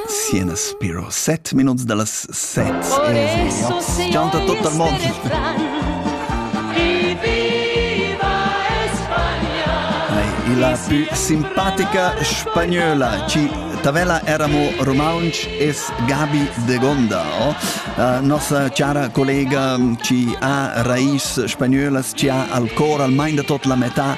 Siena Spiro, set minuts da las set e oz chanta tot il mond. E la più simpatica spagnola, ci Tavela éramo romansch, es Gabi de Gondao. La nossa chara collega ci ha rais spagnölas, ci ha al cor, al mind da tot la metà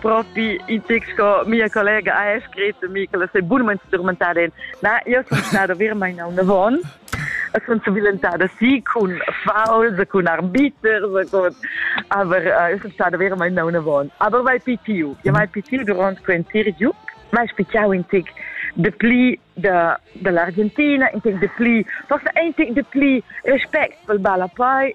propi in tic sco mia collega ha scrit Michael sei bunament strumentada in na io sono stata veramente una von sono violentata sì con fouls con arbiter con aber io sono stata veramente una von aber vai pitiu ja vai pitiu durante quel interview ma spiegavo in tic de pli de dell'Argentina in tic de pli forse un tic de pli respect pel balla poi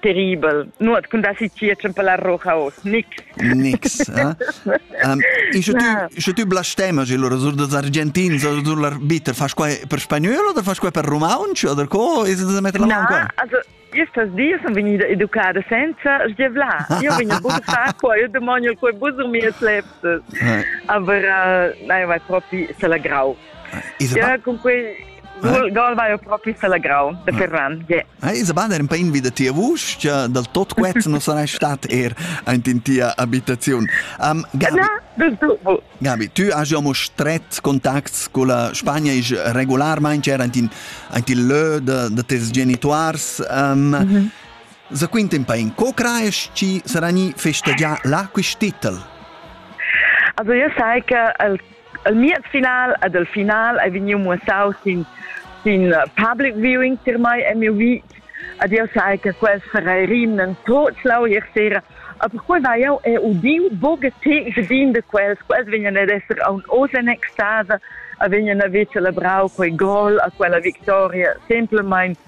terribel, nuot cun dassi tier la rocha oz, nix. Nix, eh? um, isce tu, isce tu blastema, allora, sur dos argentins, sur l'arbiter, fas qua per spagnolo oder fas qua per romaunch oder co, is da metter la mano qua? Also, Estas dies son vegnida educada senza sgiavlar. Io vegno bus fa qua, io demonio qua bus sur mie sleptes. Aber, nein, vai propi se la grau. Isabella? Ja, cun quei Dal vai propi salagrau da Ferran. Ah, Isabella era un po' invita tia vuschia dal tot quet non sarà stat er in tia abitazione. Um, Gabi, Na, das du. Gabi, tu hai già stret contacts con la Spagna e regolarmente era in in lö da da tes genituars. Um, mhm. Za quint un po' in co craes ci sarà ni festagià là quist titel? Also io sai che il El miez final ed el final ei vegniu muossau sin sin public viewing tier mei e miu vit ed jeu sai che quels farei rimnen tot lauier sera. A perquei vai jau è udiu buca tec din de quels, quels vegnan ad esser aun oz en extasa, a vegnan a ver celebrau quei gol, a quella victoria, semplemain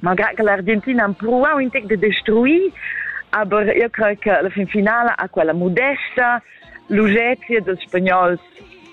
malgrad che l'Argentina ha empruau in tec de destruir, aber io crei che la fin finala ha quella modesta lugezia dels spagnols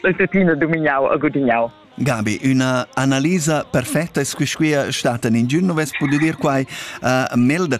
el tuttina domignau e gudignau. Gabi, una analisa perfetta squisquia stata in giorno vess potuto dir quai a uh, Melder.